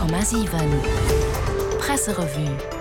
100,7 Presserevue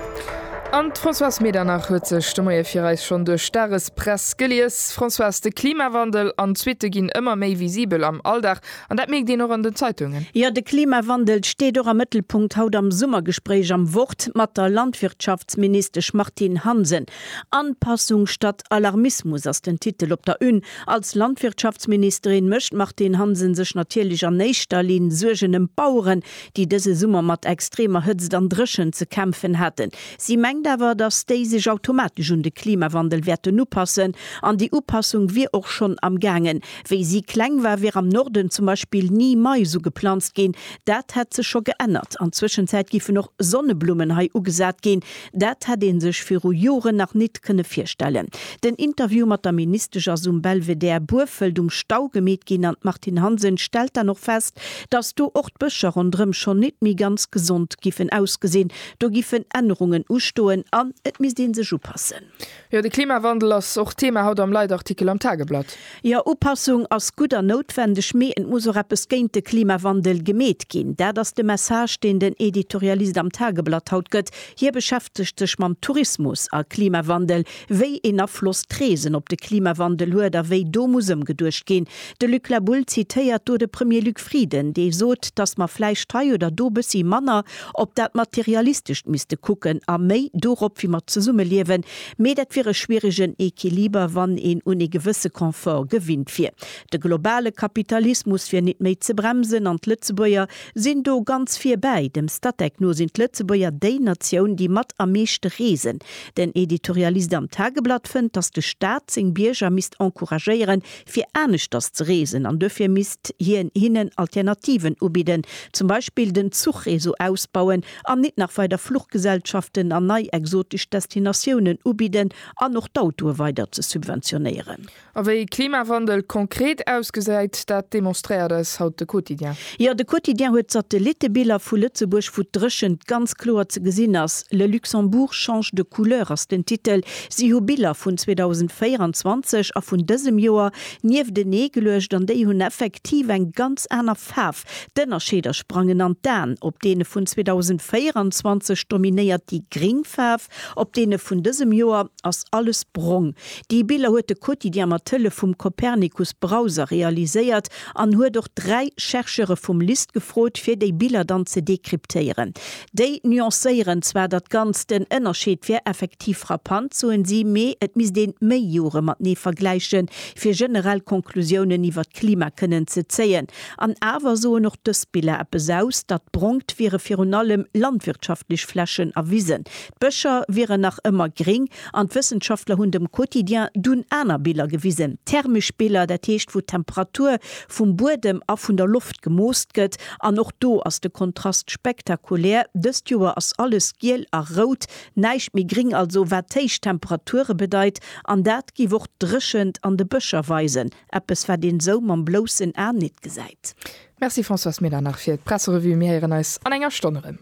An d'Françoise Medernach huet sech de Moie fir eis schonn duerch d'Dagespress gelies. Françoise, de Klimawandel an d'Suitte ginn ëmmer méi visibel am Alldag an dat mierkt een och an den Zeitungen. Jo, de Klimawandel steet och am Mëttelpunkt haut am Summergespréich am Wort mat der Landwirtschaftsministesch Martine Hansen. Anpassung statt Alarmismus ass den Titel op der Une Als Landwirtschaftsministerin mécht d'Martine Hansen sech natierlech an éischter Linn Suergen ëm d'Baueren, déi dëse Summer mat extremer Hëtzt an Dréchent ze kämpfen haten. Si mengt awer, datt déi sech automatesch un de Klimawandel wäerten upassen. An déi Upassung wier och schonn am gaangen. Wéi si kleng war, wier am Norden zum Beispill ni Mais ugeplanzt ginn. Dat hätt sech scho geännert. An Zwëschenzäit giffen och Sonneblummen hei ugesat ginn. Dat hätt ee sech viru Joren nach nit kënne virstellen. Den Interview mat der Ministesch ass um Belvedere Burfelt um Stau gemeet ginn an d'Martine Hansen stellt dann och fest, datt do och d'Bëscher ronderëm schonn nit méi ganz gesond giffen ausgesinn. Do giffen Ännerungen ustoen an et misst ee sech upassen. Jo, de Klimawandel ass och Thema haut am Leitartikel am Tageblatt. Jo, Upassung ass gutt a noutwendeg, mee et muss och eppes géint de Klimawandel gemeet ginn. Dat ass de Message, deen den Editorialist am Tageblatt haut gëtt. Hie beschäftegt sech mam Tourismus a Klimawandel, wéi een Afloss d'Reesen op de Klimawandel huet a wéi do muss ëmgeduecht ginn. De Luc Laboul zitéiert do de Premier Luc Frieden, dee sot, datt mer vläicht hei oder do bëssi manner op dat Materialistescht misste kucken a méi dorop, wéi mer zesumme liewen, mee dat wier e schwieregen Equiliber, wann een un ee gewësse Confort gewinnt wier. De globale Kapitalismus wier nit méi ze bremsen an d'Lëtzebuerger sinn do ganz vir bäi. Dem Statec no sinn d'Lëtzebuerger déi Natioun, déi mat am meeschte reesen. Den Editorialist am Tageblatt fënnt, datt de Staat seng Bierger misst encouragéieren, fir aneschters ze reesen an duerfir misst hien hinnen Alternativen ubidden, zum Beispill den Zuchreseau ausbauen an nit nach weider Fluchgesellschaften an nei exotesch Destinatiounen ubidden an och d'Autoe weider ze subventionéieren. A wéi Klimawandel konkret ausgesäit, dat demonstréiert eis haut de Quotidien. Jo, de Quotidien huet Satellittebiller vu Lëtzebuerg, wou d'Dréchent ganz kloer ze gesinn ass. Le Luxembourg change de couleur ass den Titel. Si hu Biller vun 2024 a vun dësem Joer nieftenee geluecht an déi hunn effektiv eng ganz aner Faarf. D'Ënnerscheeder sprangen an d'Aen, op deene vun 2024 dominéiert déi gring Faarf, op deene vun dësem Joer ass alles brong. Déi Biller huet de Quotidien mat Hëllef vum Copernicus Browser realiséiert. an huet och dräi Chercheure vum LIST gefrot, fir déi Biller dann ze dekryptéieren. Déi nuancéieren zwar dat Ganzt, den Ënnerscheed wär effektiv frappant, soen si, mee et misst ee méi Jore matenee vergläichen, fir generell Konklusiounen iwwer d'Klima kënnen ze zéien. An awer soen och dës Biller eppes aus, datt brongt wiere virun allem landwirtschaftlech Flächen a Wisen. D'Bëscher wieren nach ëmmer gréng an d'Wëssenschaftler hunn dem Quotidien dunn aner Biller gewisen, thermesch Biller, dat heescht wou d'Temperatur vum Buedem a vun der Loft gemoosst gëtt. An och do ass de Kontrast spektakulär, dëst Joer ass alles giel a rout, näischt méi gréng, also wat d'héich Temperature bedeit. An dat géif och d'Dréchent an de Bëscher weisen, eppes wat een esou mam bloussen A net gesäit. Merci Françoise Medernach fir d'Presserevue. Mir héieren eis an enger Stonn erëm.